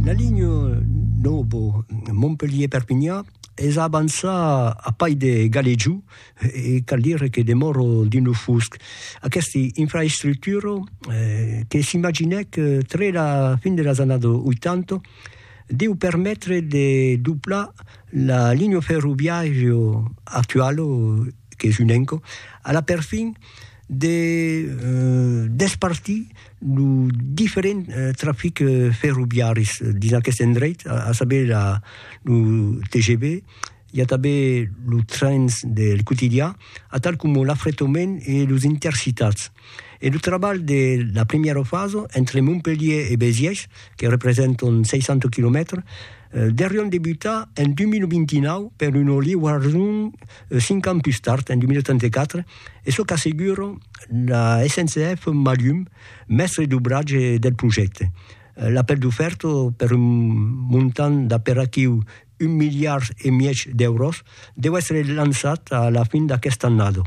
La linha nòva Montpelhièr-Perpinhan es a avançar a pair de Galejou e cal dire que demòra dins lo fusc. Aquesta infraestructura que s'imaginèc tre la fin de las annadas 80 deu permetre de doblar la linha ferroviària actuala qu'es un enco a la perfin de despartir lo diferent trafic ferroviaris dins aqueste endreit, a saber la, lo TGV, i a tanben los trens del quotidian, atal coma l'afretomèn e los intercitats. E lo trabalh de la primièra fasa, entre Montpelhier e Béziers, que representan 600 quilomètres, deurián debutar en 2029 per una liuason cinq ans pus tard, en 2034, e çò qu'assegura la SNCF Malhum, mèstre d'obratge del projècte. L'apèl d'ofèrta per un montant d'aperatiu un miliard e mièg d'èuros deu èstre lançat a la fin d'aquesta annada.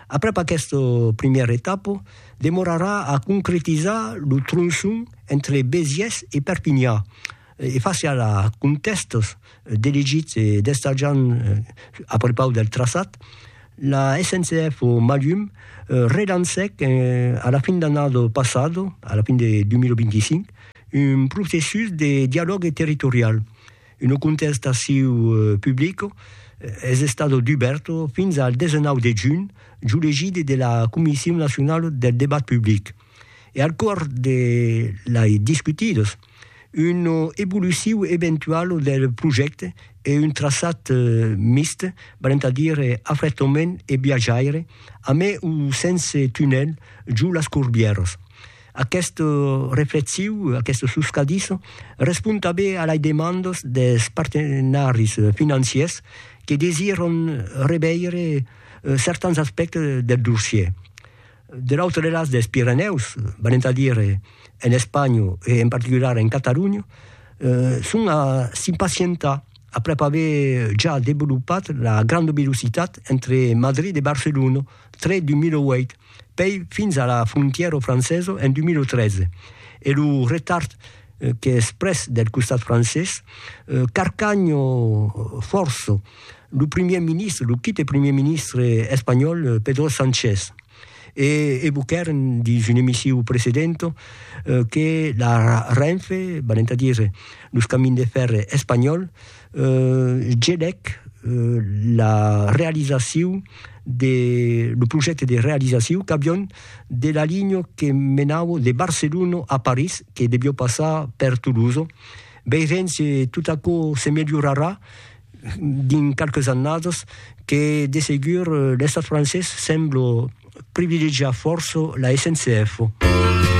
Aprèp aquesta primièra etapa, demorarà a concretizar lo tronçon entre Besiés e Perpinha, E fasiá la contèstes d'elegits e d'estarjant a prepaus del traçat, la SNCF o Malhum relancèc a la fin d'annada passada, a la fin de 2025, un processus de dialògue territorial. Una contestaciu publica es estada dubèrta fins al 19 de junh, jo legide de la Comission nacionale del debat public. E al cors de lei discutidas, Una evoluciu eventuala del projècte e un traçat mixt, valent a dire afretament e viatjaire, amé o sense tunèl, jo las Corbièras. Aquesta reflexiu, aquesta soscadissa, respond tanben a las demandas dels partenaris financiers que desiran reveire certans aspèctes del dossier. De l'autre delàs dels Pirenèus, venent a dire en Espanha e en particular en Catalonha, son a s'impacientar aprèp aver ja developat la granda velocitat entre Madrid e Barcelona tre 2008, pei fins a la frontièra francesa en 2013, e lo retard qu'es pres del costat francés carcanha fòrça lo primièr ministre, lo quite primièr ministre espanhòl Pedro Sánchez, e evoquèren dins un emissiu precedent que la Renfe, valent a dire los camins de fèrre espanhòls, gelèc la realizacion de lo projècte de realizacion qu'avión de la linha que menava de Barcelona a París, que devió passar per Toulouse. Veirem se tot aquò se melhorarà. dins qualques annadas que de segur l'Estat francés sembla privilegiar fòrça la SNCF.